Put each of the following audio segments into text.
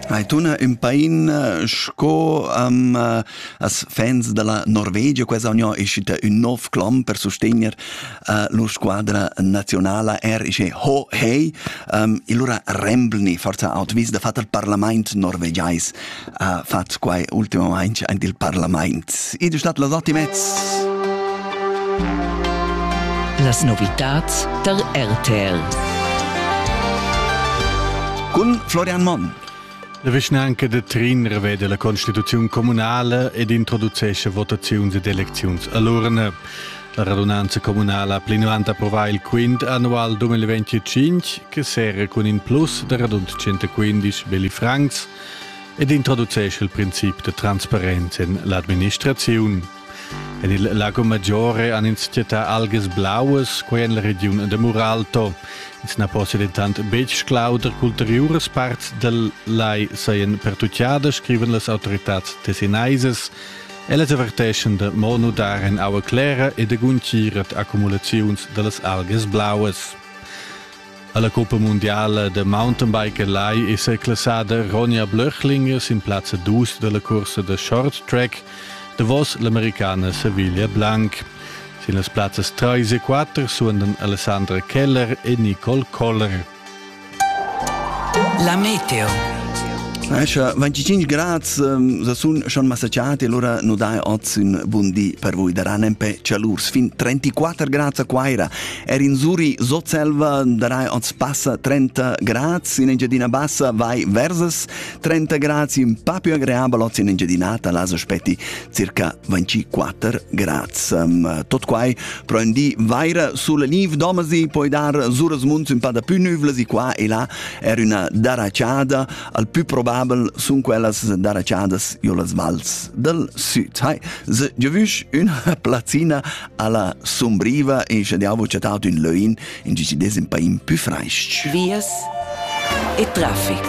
Hai tuna ün pain eh, sco um, eh, as fans della Norvegia, questa union è uscita un nuovo clom per sostegner uh, la squadra nazionale er ist ho hey um, e allora rembelni forza out vis da fat il parlament norvegiais ha fatg quai ultimamain anc il parlament. Id è stat las otg mez. Las novitads tar RTL. Cun Florian Monn. La vischnanca de Trinner vede la constituzione comunale ed introducesce votazioni ed elezioni all'urne. La radunanza comunale ha plinuant approvà il quint annual 2025 che serra cun in plus da radund 115 belli francs ed introducesce il princip de transparenza in l'administrazione. En il Lago Maggiore han ins città algas blaues, quai en la region de Muralto. Ins na possa ditant betg clauder qu'ulteriuras parts del lai seien pertucciadas, scriven las autoritats tessinaisas. Ellas averteschen de mo nudar en aua clera e de gunciret accumulaziuns de las algas blaues. Alla Coppa Mundiale de Mountainbike lai è seclassada Ronja Blöchlinger sin plazza 2 della corsa de Short Track davos l'americana Sevilla Blanc. Sin las plazzas 3 e 4 suondan Alessandra Keller e Nicole Koller. La Meteo. Escia 25 grad ehm, sa sun schon massacciati allora nu dai oz un buon di per voi da Ranempè cialurs fin 34 grad a Quaira Er in Zuri Sotselva darai oz passa 30 grads, in Engiadina Bassa vai versus 30 grads, in pa più agreabel oz in Engiadinata las aspetti circa 24 grads. Um, tot quai pro in di vaira sulla niv domasi, poi dar suras munts un pa da più nüvlas e qua e là er una daracciada, al più probabel sun quellas daraciadas io las vals del sud. Hai, se giovüsch una plazzina Alla sumbriva e sche diavo chattau ün löin in gi si des in paim pü freisch. Vias e traffic.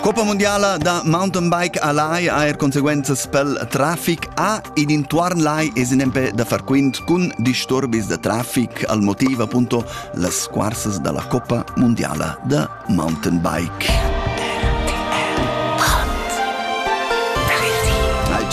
Coppa mondiala da mountainbike a Lai ha er conseguenzas pel traffic a ed intuorn Lai es in empè da far quint cun disturbis da traffic al motiv appunto las squarsas da la Coppa mondiala da Mountainbike.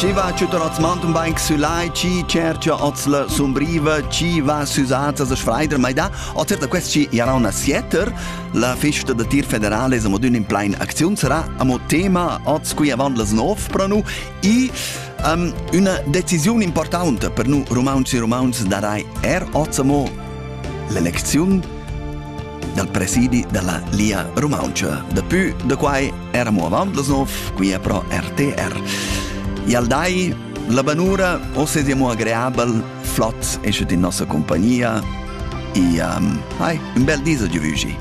Chi va tschütter als Mountainbike sü lai, chi cercha oz la sumbriva, chi va sü zazas a sfreider, ma da o certa quest chi era una sieter, la festa da tir federale es amo dün in plain acziun sarà amo tema oz qui avant las 9 pro nu i um, üna decisiun importanta per nu rumauntsch e rumauntsch darai er oz amo l'elecziun dal presidi dalla Lia Rumauntscha. Depui da quai era mo avant las nov, qui è pro RTR. Ialdai, la banura, osse sia mo agreabel, flot, esce in nossa compagnia. E um, hai, un bel dis a giuvugi.